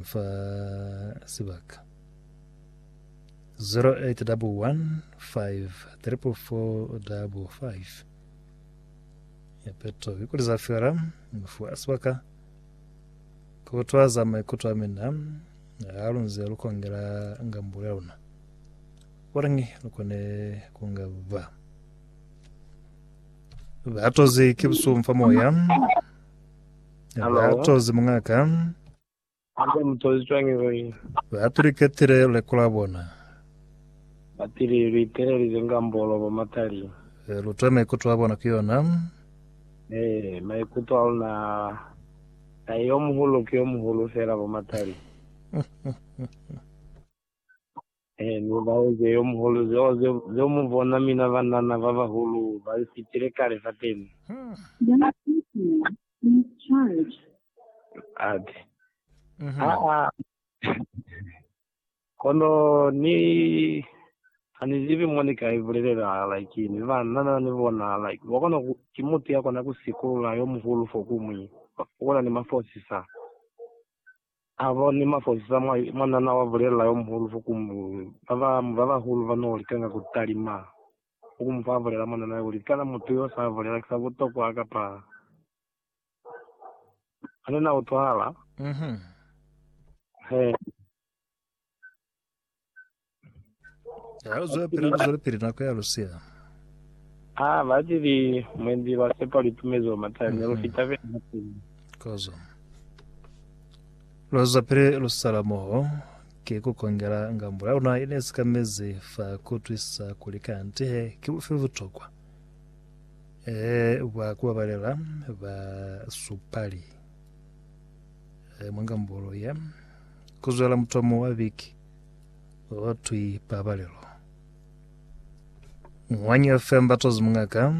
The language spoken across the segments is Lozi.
fa sibaka 08115345 ya peto ikuli za fela fa sibaka kutwa za maikuto a mina ha lunze lukongela ngambo ya luna orange lukone kunga ba batozi ke busumfa moya Hello. batozi mungaka Ba ka mu tozi cwañi kuli ni. Ba apiliketile luleko lwa bona. Ba pili lu itelelize nga mbolo bo matali. He lu twa maikuto a bona ku yona. He maikuto a luna a. Tahe yo muhulu ki yo muhulu fela bo matali. He ni laeze yo muhulu zeo ze, ze mu bona mina banana ba bahulu ba li fitile kale fateni. Young people, please charge. Ati, Aa. Kono ni, ha ni zibi mo ni ka ibulelela, like, ni banana ni bona, like, wa kona ku, ki mutu ya kona ku sikulula yo muhulu fo ku mwi, una ni mafosi sa. A ba ni mafosisa mwa, mwa nana wa bulelela yo muhulu fo ku mu, ba ba, ba bahulu ba no likanga ku talima fo ku mu fa bulela mwa nana kuli, Kana mutu yo sa bulela ki sa butokwa kapa ane na utwahala? Mm-hmm. He. Ha lu zwela pili, lu zwela pili nako ya lu siya. Ha ba tili mwendi lwa sepa lu itumezi lwa matani, lu fita pili na pili. Kozo. Lu zwa pili lu sala moho, ki ku kongela ngambo ya luna ine sikamezi fa ku twisisa kuli kanti he ki bufi butokwa e bwa ku babalela basupali. Eh, mwa ngambolo ya kuzwela mutomo wa viki watwi pabalelo ngwanyi fm batozi mungaka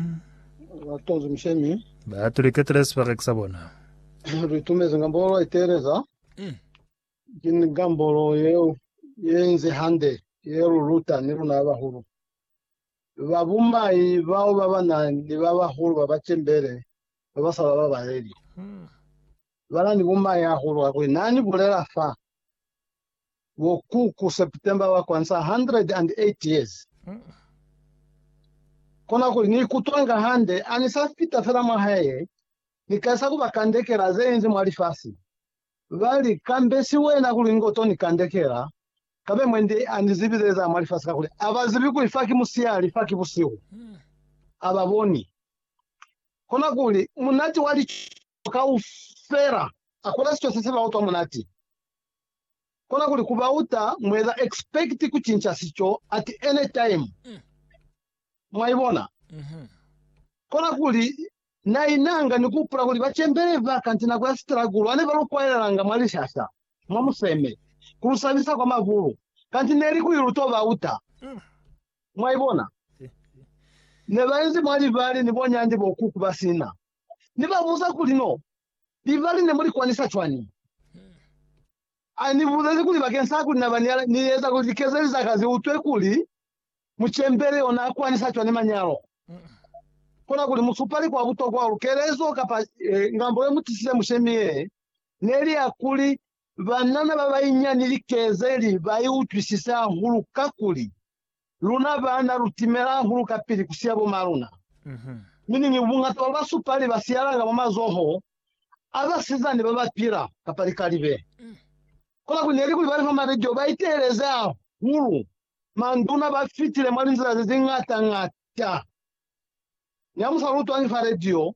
batozi mshemi batuliketele sibareki sa bona ritumeze ngambolo iteleza mm. ke ngambolo yeo yenze hande ye luluta ni luna bahulu Babumbai bao babana ni babahulu babacembele babasa bababaleli bana ni bumai hahulu kakuli. Nani bulela fa bo ku ku September wa kwanza 108 years, kona kuli ni ikutwanga hande ani sa fita fela mwa hae, ni kalisa kuba kandekela ze inzi mwa lifasi. Ba li, Kambe si wena kuli nge u to ni kandekela? Kambe mwendi a ni zibile za mwa lifasi kakuli a ba zibi kuli fa ki musiyali, fa ki busihu. A ba boni. Konakuli, munati wa lico kaufela a kola sico se si ba utwa munati. Konakuli, ku ba uta mueza expect ku cinca sico at any time. Mwa ibona? Konakuli, Na inanga ni kuhupula kuli bacembeli ba kanti nako ya sitilakulu bane ba lu kwaelelanga mwa lishasha, mwa museme, ku lu sabisa kwa mabulu, kanti neli kuli lu to ba uta. Mwaibona? Ne ba inzi mwa libali ni bonyandi bo kuku ba sina. Ni ba buza kuli, No, libali ne mu li kwanisa cwañi? A ni bulezi kuli bakeñisa kuli na ba ni eza kuli likezeli za ka zi utwe kuli Mucembeli ona akwanisa cwani manyalo? Kona kuli musupali kwa butokwa wa lukelezo kapa ngambo yemutisile mushemi ye neli ya kuli banana babainyani likezeli baiutwisise hahulu kakuli luna baana lutimela hahulu kapili kusiya bomaluna. Mi niñi buñata bwa basupali basiyalanga mwa mazoho a basizani babapila kapa likalibe. Kona kuli neli kuli balifa malijo baiteeleze hahulu Manduna ba fitile mwa linzila ze zi ngata-ngata. Ni ha mu sa lu utwangi fa radio,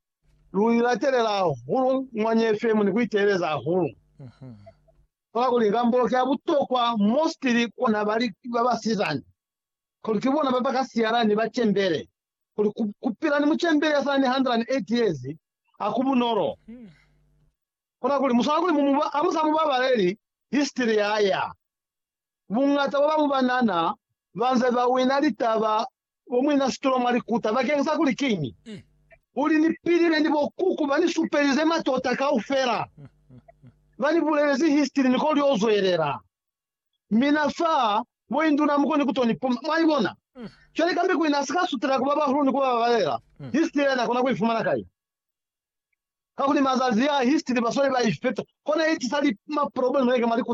lu li latelela hahulu mwa nye FM ni ku iteeleza hahulu. Kola kuli inga mboloke ya butokwa mostly ku na bali ba basizana, kuli ki bona ba ba ka siyala ni bacembele, kuli ku, ku pila ni mucembele ya sa na ni 108 years ha ku bunolo. Kona kuli mu swana kuli mu mu ba, ha mu sa mu babaleli history ya ya. Buñata bwa babo banana banze bawina litaba bo muina situlo mwa likuta bakeng sa kuli kiñi? Uli ni pilile ni bo kuku ba ni supelize matota kaufela, ba ni bulelezi histiri ni ko lio zwelela. Mina fa mo induna muko ni kuto ni puma. Mwaibona? Cwale kambe kuina asi ka sutela kuba bahulu ni kuba babalela, histiri yena akona kuifumana kai? Kakuli mazazi a histiri basweli ba ifeta, kona itisa li, ma problem yeke mwa likuta.